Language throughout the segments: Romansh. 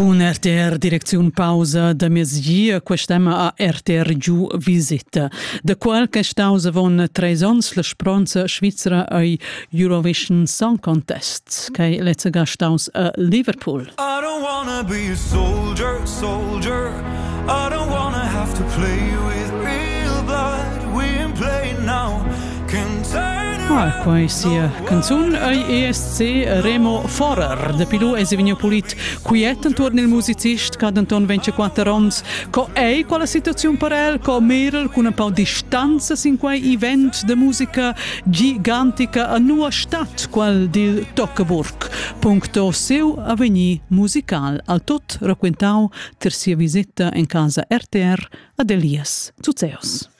Cun RTR direcziun pausa da mezgia quest'emma a RTR giu visita. Da qual che staus avon treis onns la spronza svizra ei Eurovision Song Contest, che lezza ga staus a Liverpool. I don't wanna be a soldier, soldier. I don't wanna have to play with real blood. We in play now. Ah, quai sia canzun ei ESC Remo Forer de Pilou es vegniu pulit quiet intorn il musicist che denton vence quatter ons. Co ei quella situazione per el, co Merel con un po' distanza sin quei event de musica gigantica a nua stat qual dil Tockeburg. Puncto seu avvegni musical al tot raquentau ter sia visita in casa RTR ad Elias Zuzeos.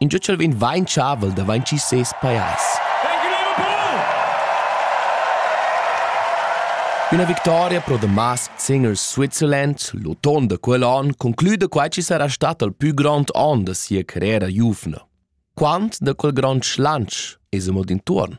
Ingio ch'el vegn vainchavel da vainchir ses pajais. Üna victoria pro Damas sin il Switzerland, l'auton da quel on, concluda quai chi sarà stat il pü grond on da sia carriera giuvna. Quant da quel grond schlanch es amo d'intuorn?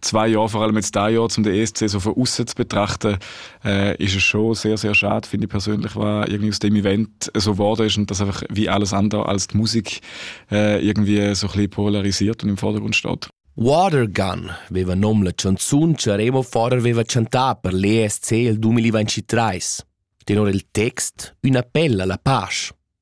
zwei Jahre vor allem jetzt ein Jahr, um den ESC so von außen zu betrachten, äh, ist es schon sehr, sehr schade, finde ich persönlich, was irgendwie aus dem Event so geworden ist und dass einfach wie alles andere als die Musik äh, irgendwie so ein bisschen polarisiert und im Vordergrund steht. Water Gun aveva nom la chanzun che Remo Forer aveva chantà per l'ESC il 2023. Tenor il text, una appella alla pace.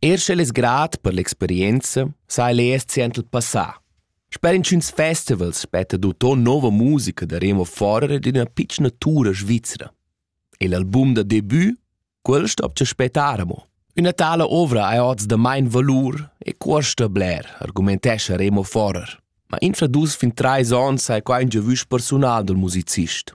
Er sch'el es grat per l'experienza, sa el eir siand il passà. Sper inchüns festivals spetta d'uton nouva musica da Remo Forer ed üna pitschna tura svizra. E l'album da debut, quel stopcha spettar amo. Üna tala ovra ha oz da main valur e cuosta bler, argumentescha Remo Forer. Ma infra dus fin trais ons sai qua ün giavüsch persunal dal musicist.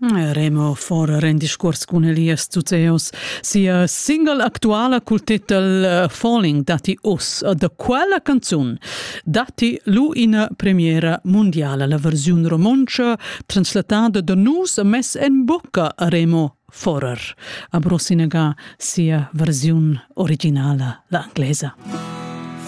Remo Fora rend discuors cun Elias Zuzeos. Sia single actuala cul titel eh, Falling datti uss. Da quella canzun datti lu ina premiera mundiala, la versiun romontscha translatada da nus e mess en bucca a Remo Forer. A Brosinaga sia versiun originala, la inglesa.